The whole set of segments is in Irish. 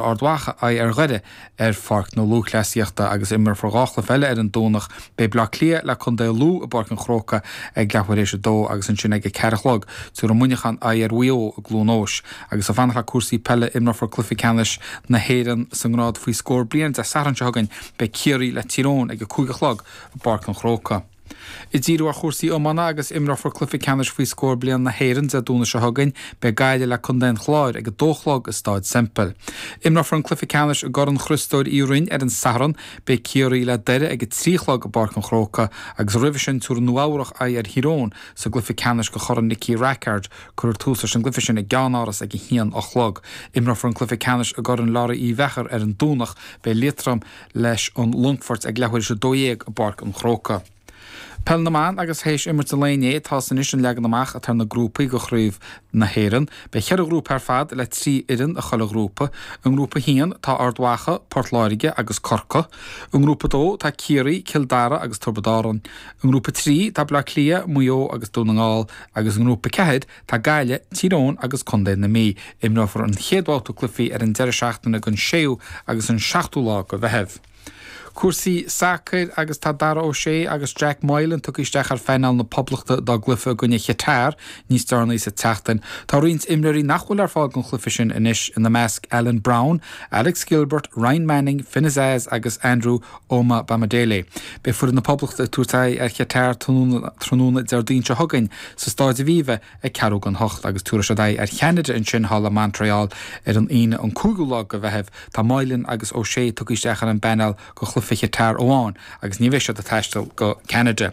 Ard Mhacha aghaidh ar Dhoire ar Pháirc na Lúthchleasaíochta agus imreofar dhá chluiche eile ar an Domhnach, beidh Bleá Cliath le contae Lú i bPáirc an Chrócaigh ag leathuair théis a dó agus ansin ag a ceathair a chlog, tabharfaidh Muineachán aghaidh ar Mhaigh Eo i gCluain Eois. Agus ag fanacht le cúrsaí peile, imreofar cluiche ceannais na hÉireann sa ngrád faoi scór bliain Dé Sathairn seo chugainn, beidh Ciarraí le Tír Eoghain ag a cúig a chlog i bPáirc an Chrócaigh. Ag díriú ar chúrsaí iomána agus imreofar cluiche ceannais faoi scór bliain na hÉireann Dé Domhnaigh seo chugainn. Beidh Gaillimh le contae an Chláir ag a dó a chlog i Stáid Semple. Imreofar an cluiche ceannais i gCorn Chriostóir Uí Rinn ar an Satharn. Beidh Ciarraí le Doire ag a trí a chlog i bPáirc an Chrócaigh agus roimhe sin tabharfaidh Nua Eabhrach aghaidh ar Thír Eoghain sa gcluiche ceannais go Chorn Nicky Rackard. Cuirfear tús leis an gcluiche sin i gCeannáras ag a haon a chlog. Imreofar an cluiche ceannais i gCorn Labhraí Uí Mheachair ar an Domhnach. Beidh Liatroim. leis an Longfort ag leathuair théis a dó dhéag i bPáirc an Chrócaigh. Peil na mBan agus théis imirt an lae inné, tá's anois an leagan amach atá ar na grúpaí do Chraobh na hÉireann. Beidh cheithre ghrúpa ar fad le trí fhoireann i chuile ghrúpa. I ngrúpa a haon tá Ard Mhacha, Port Láirge agus Corcaigh. I ngrúpa a dó tá Ciarraí, Cill Dara agus Tiobrad Árann. I ngrúpa a trí tá Bleá Cliath, Maigh Eo agus Dún na nGall agus i ngrúpa a ceathair Tá Gaillimh, Tír Eoghain agus Contae na Mí. Imreofar an chéad bhabhta cluichí ar an deireadh seachtaine den 6ú agus an 7ú lá go Mheitheamh. Cúrsaí sacair agus tá Dara O'Shea agus Jack Moylan tugtha isteach ar phainéal na Poblachta dá gcluife i gcoinne Chatar níos deireanaí sa tseachtain. Tá roinnt imreoirí nach bhfuil ar fáil don chluife sin anois, ina measc Alan Browne, Alex Gilbert, Ryan Manning, Finn Azaz agus Andrew Omobamidele. Beidh foireann na Poblachta ag tabhairt aghaidh ar Chatar tráthnóna Déardaoin seo chugainn sa Stáid Aviva ag ceathrú don hocht agus tabharfaidh siad aghaidh ar Cheanada ansin thall i Montreal ar an Aoine an 5ú lá go Mheitheamh. Tá Moylan agus O'Shea tugtha isteach ar an bpainéal go Chluiche Chatar amháin agus ní bheidh siad ag taisteal go Ceanada.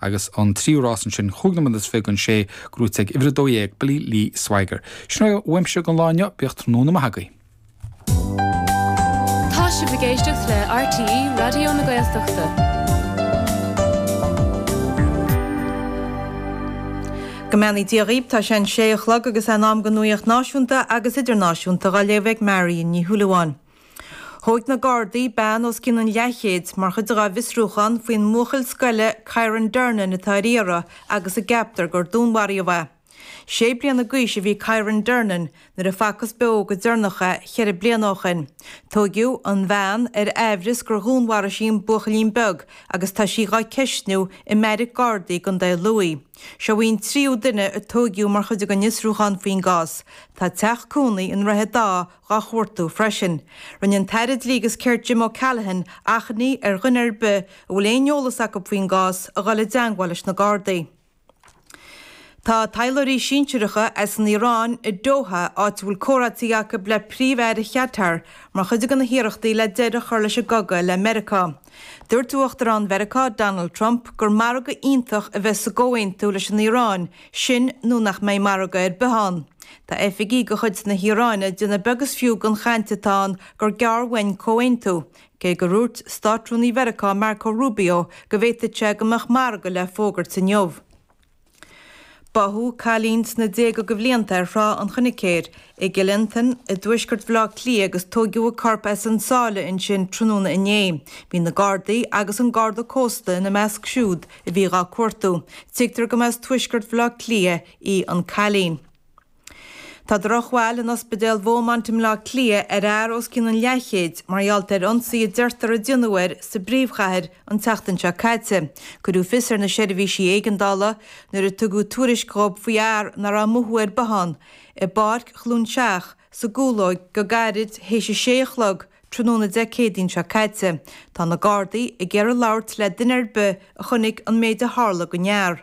Agus an tríú rás ansin chúig nóiméad is fiche don sé gnóite ag uimhir 12, Billy Lee Swagger. Sin é uaimse don lá inniu, bíodh tráthnóna maith agaibh. Tá sibh ag éisteacht le RTÉ Raidió na Gaeltachta. Go mbeannaí Dia dhaoibh, tá sé an sé a chlog agus é in am don nuaíocht náisiúnta agus idirnáisiúnta dhá léamh ag Marion Ní Shúilleabháin. Thóig na Gardaí bean os cionn an leathchéid mar chuid dá bhfiosrúchán faoin mbuachaill scoile Kyran Durnin atá ar iarraidh agus a gceaptar gur dúnmharaíodh é. Sé bliana d'aois a bhí Kyran Durnin nuair a facthas beo go deireanach é ceithre bliana ó shin. Tóigeadh an bhean ar aimhreas gur dhúnmharaigh sí an buachaillín beag agus tá sí dhá ceistniú i mbeairic Gardaí i gContae Lughaidh. Seo í an tríú duine a tóigeadh mar chuid den fhiosrúchán faoin gcás. Tá teach cónaí i nDroichead Átha dha chuartú freisin. Rinne an tAire Dlí agus Cirt Jim O'Callaghan achainí ar dhuine ar bith a bhfuil aon eolas acu faoin gcás a dhul i dteangmháil leis na Gardaí. Tá taidhleoirí sinsireacha as an Iaráin i Doha, áit a bhfuil comhráití acu le Príomh-Aire Chatar mar chuid de na hiarrachtaí le deireadh a chur leis an gcogadh le Meiriceá. Dúirt Uachtarán Mheiriceá Donald Trump gur margadh iontach a bheas sa gcomhaontú leis an Iaráin, Sin nó nach mbeidh margadh ar bith ann. Tá oifigigh de chuid na hIaráine ag déanamh beag is fiú den chaint atá ann gur gearr uainn comhaontú, cé gur úirt Státrúnaí Mheiriceá Marco Rubio go bhféadfadh sé go mbeadh margadh le fógairt inniu. Báthadh cailín sna déaga de bhlianta ar Thrá an Choinicéir i gCill Fhionntain i dtuaisceart Bhaile Átha Cliath agus tóigeadh a corp as an sáile ansin tráthnóna inné. Bhí na Gardaí agus an Garda Cósta ina measc siúd a bhí dhá cuartú. Tuigtear go mba as tuaisceart Bhaile Átha Cliath í an cailín. Tá drochbhail in Ospidéal Bheaumont i mBaile Átha Cliath ar fhear os cionn an leathchéid mar gheall ar ionsaí a deirtear a déanadh air sa bpríomhchathair an tseachtain seo caite. Cuireadh fios ar na seirbhísí éigeandála nuair a tugadh tuairisc dhób faoi fhear nach raibh mothú ar bith ann i bPáirc Chluain Seach, sa gCúlóig go gairid théis a sé a chlog tráthnóna Dé Céadaoin seo caite. Tá na Gardaí ag iarraidh labhairt le duine ar bith a chonaic an méid a tharla dhon fhear.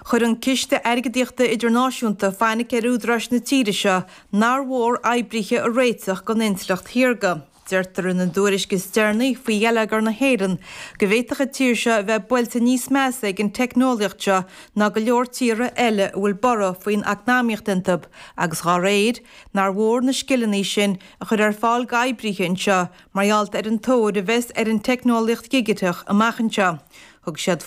Chuir an Ciste Airgeadaíochta Idirnáisiúnta fainic ar údaráis na tíre seo nár mhór oibrithe a réiteach dhon intleacht shaorga. Deirtear ina dtuairisc is deireanaí faoi gheilleagar na hÉireann go bhféadfadh an tír seo a bheith buailte níos measa ag an teicneolaíocht seo ná go leor tíortha eile a bhfuil borradh faoin eacnamaíocht iontab agus dhá réir nár mhór na scileanna sin a chur ar fáil d'oibrithe anseo mar gheall ar an tóir a bheas ar an teicneolaíocht dhigiteach amach anseo. Thug siad